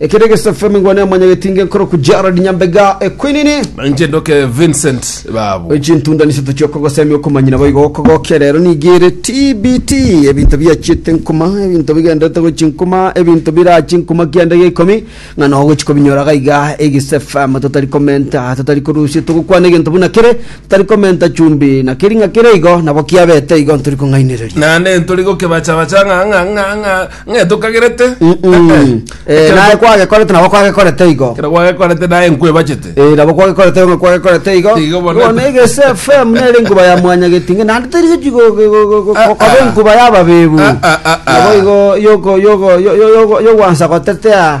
Ekero egesaku FM ngwa ne omonyagetinge nkorokwa Gerald Nyambega Equinini. Inche ndoke Vincent babu. Chintunda niseto chiokogosemia okomanyina boigo okogokia rero nigire TBT ebinto biachiete nkuma ebinto bigenderete gochi nkuma ebinto birachi nkuma kianda gia ikomi ng'a no ogochi kobinyora gaiga egise FM totari komenta totari korusia togokwana egento buna kere totari komenta chumbi na keri ng'a kere igo nabo kiabete igo ntori kong'ainereria Naende ntori gokebachabacha ng'a ng'a ng'a ng'a Ng'e tokagerete. Mm, mm. Eh, eh. Eh, Ekero naye to- kwagekorete nabo kwagekorete igo ekero gwagekorete naye nkwebachete. Eh, nabo kwagekorete ng'a kwagekorete igo Igo bono- bono egese fm nere enkuba ya mwanyagetinge naende teri gochi go- go- go- go- go- Ah, koba ah. enkuba yababebu Ah, ah, ah, ah. nabo igo yoko- yoko- yo- yo- yoko- yogwansa gotetea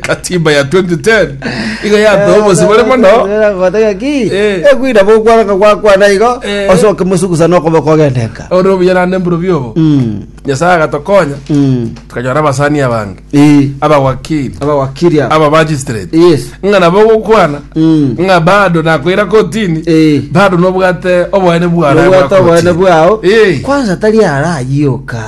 katiba ya 2010 iga yatoa obosi bore mono Gotega ki? Eh. Ekwira bokwaraka gwakwana igo Eh. osoke musugusa nokobe kogendenka. ore obuya nande mburu biobo Mm. nyasaye agatokonya Mm. tukanyora abasani abange Eh. abawakili Abawakiri aba. aba magistrate Yes. ng'a nabo ogokwana Mm. ng'a bado nakoira kotini Eh. bado nobwate oboene bwara Nobwate oboene bwao. Eh. Kwanza tari arayiyoka.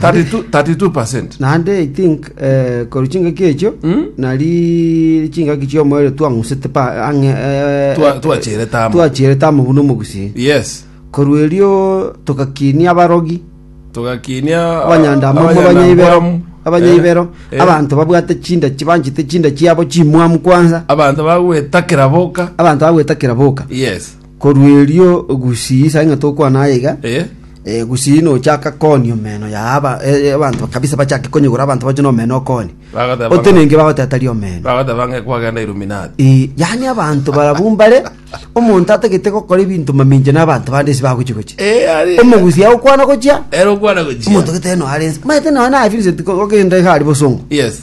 32 32%. Naende I think eh, korwa chingaki echio Mm. nari chingaki chiomoere twang'usete pa ang'e eh, Twa- eh, twachirete amo. twachirete amo buna omogusii Yes. korwa erio togakinia abarogi Tugakinia abanyandamo abanyaibero abanyaibero Eh. abanto babwate chinda chibanchete chinda chiabo chimwamu kwanza Abanto bagwetakera boka. abanto bagwetakera boka Yes. Korwa erio gusii, saing'a tokwane aye iga, Eh? eh, gusii nochaka koonia omeno ya aba- eh, eh, abanto kabisa bachake konyegora abanto bache nomeno okoonie. Bagateba- Otenenge bagoteta ria omeno. Bagateba ng'a kwagenda Illuminati. Eh, yaani abanto barabwo mbare omonto atagete gokora ebinto mamincha na abanto bande ase bagochi gochi. Eh, ari. Omogusi agokwana gochia, Ero okwana gochia. omonto gete no arense. Maete no na Vincent ko- ogenda iga ari bosongo. Yes.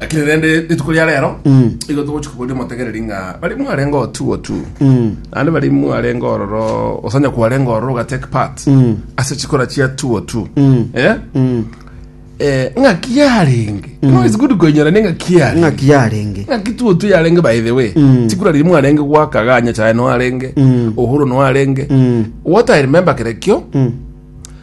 lakini rende rituko ria rero igo togochi koboria omotegereri ng'a bari mwarenge otu otu naende bari mwarenge ororo osanya kwarenge ororo ogatake part ase chikora chia tu otu eh eh ng'aki yarenge no is good koinyora ne ng'aki yarenge ng'aki yarenge ng'aki tu otu yarenge by the way chikura riri mwarenge gwaka ganya chae no arenge ohuru no arenge what i remember kere kio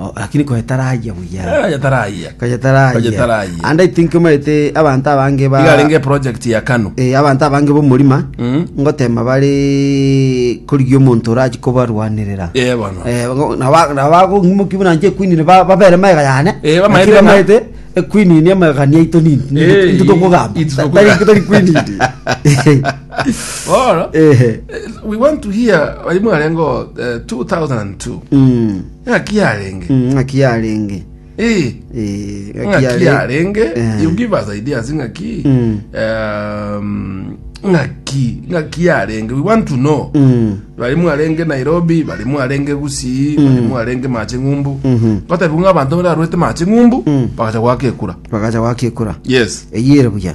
Oh, lakini koyetarayia buya. Eh, yatarayia. Koyetarayia. Koyetarayia. And I think omaete abanto abange ba igarenge project ya kanu eh, abanto abange b'omorima Mm. ngotema bare korigia omonto orachi kobarwanirera Eh, bono. Eh, ngo- na ba- na bagong'imoki buna nche ekwinini ba- babere maega yane Eh, bamaete Lakini ng'a- bamaete ekwinini amagania aito nini Eh, nintotokogamba ito tokogamba. tari kwinini Bono, Ehe. we want to hear bari mwarengo eh, 2002 Mm. ng'aki yarenge Mm, ng'aki yarenge Eh, Eh, ng'aki yarenge Eh. you give us ideas ng'aki Mm. um, ng'aki ng'aki yarenge we want to know Mm. bari mwarenge nairobi bari mwarenge gusii bari mwarenge mache ng'umbu Mhm. gotebu ng'a abanto bararwete mache ng'umbu bagacha gwaka ekura bakaja gwakekura yes eyire buya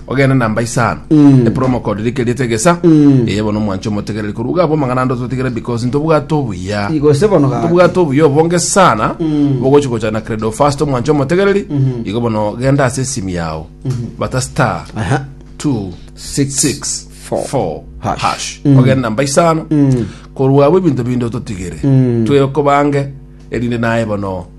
ogende namba isano epromo code rike riete gesa eye bono omwanche omotegereri korwa iga abwo amang'ana ande ototigere because ntobwate obuya Igo se bono gaki. tobwate obuya obonge sana bogochi gocha na credo fast omwanche omotegereri igo bono genda ase esimu yao bata star Aha. 2 Six, 6 four, 4 hash. hash ogende namba isano korwa abwo ebinto binde ototigere twekobange erinde naye bono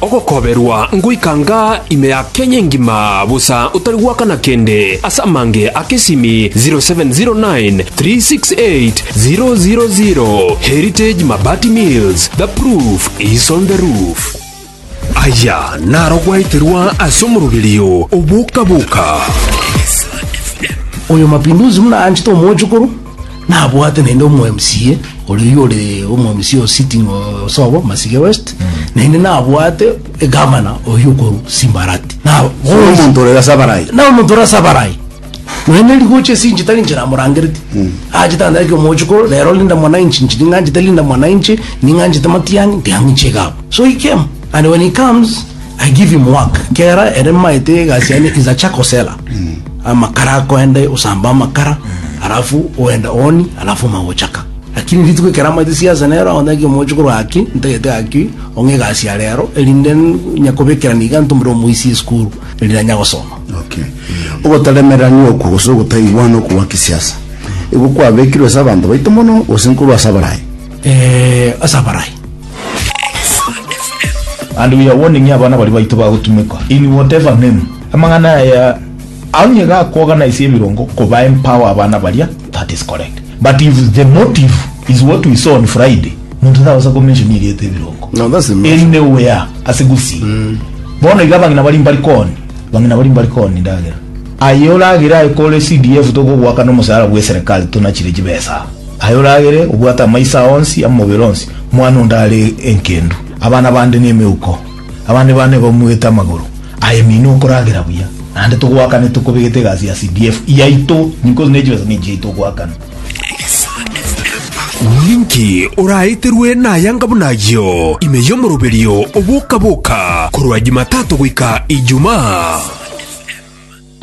Ogokoberwa ngoika nga ime ya Kenya engima, bosa otari goakana kende ase amange a kesimi 0709368000 Heritage Mabati Mills, the proof is on the roof. Aya naro gwaeterwa ase omoroberio o boka boka. Oyo Mapinduzi buna anchete omochokoro. nabwate naende omo MCA oria ore omo MCA o sitting o- osobo Masige West naende nabwate egamana oyo okoru Simbarati na omonto ore gase abarayi na omonto ore ase abarayi naende rigocha ase inche tari inche namorangereti achete ande ake omochiko rero Linda Mwananchi inche ning'anchete Linda Mwananchi ning'anchete Matiang'i ntiang'inche iga abwo so he came and when he comes I give him work kera ere maete egasi yane is a charcoal seller amakara akoende osamba amakara alafu oende oni alafu magochaka lakini rituko ekero amaete siasa nero agonya kimochi korwa aki ntagete gaki ong'e egasi ya rero erinde nyakobekera niga ntumire omoisia esukuru erinde anya gosoma Okay. Ogotaremerania okwo gose ogotaiwana okwo gwa kisiasa. Igo kwabekirwe ase abanto baito mono gose nkorwa ase abaraia. ase abarai. And we are warning you abana baria baito bagotumekwa in whatever name. Amang'ana aya onye gakwogana ase ebirongo koba empower abana baria that is correct but if the motive is what we saw on Friday monto tagosa ko mention erieta ebirongo No, that's the motion. anywhere ase gusii bono iga abang'ina bari mbari koni bang'ina bari mbari koni ndagera Aye oragere aye kore CDF tokogoaka nomosaara bw'eserekari tonachire chibesa. Aye oragere obwate amaiso ao onsi amobere onsi, mwana onde are enkendu, abana bande nemeuko, abande bane bamwete amagoro. Aye mino okoragera buya. Naende togoakane tokobegete egasi ya CDF yaito ninkosi nechibesa ninki yaito ogoakana. Ninki oraeterwe nayanga buna ayio ime y'omoroberio oboka-boka korwa Jumatato goika Ijumaa?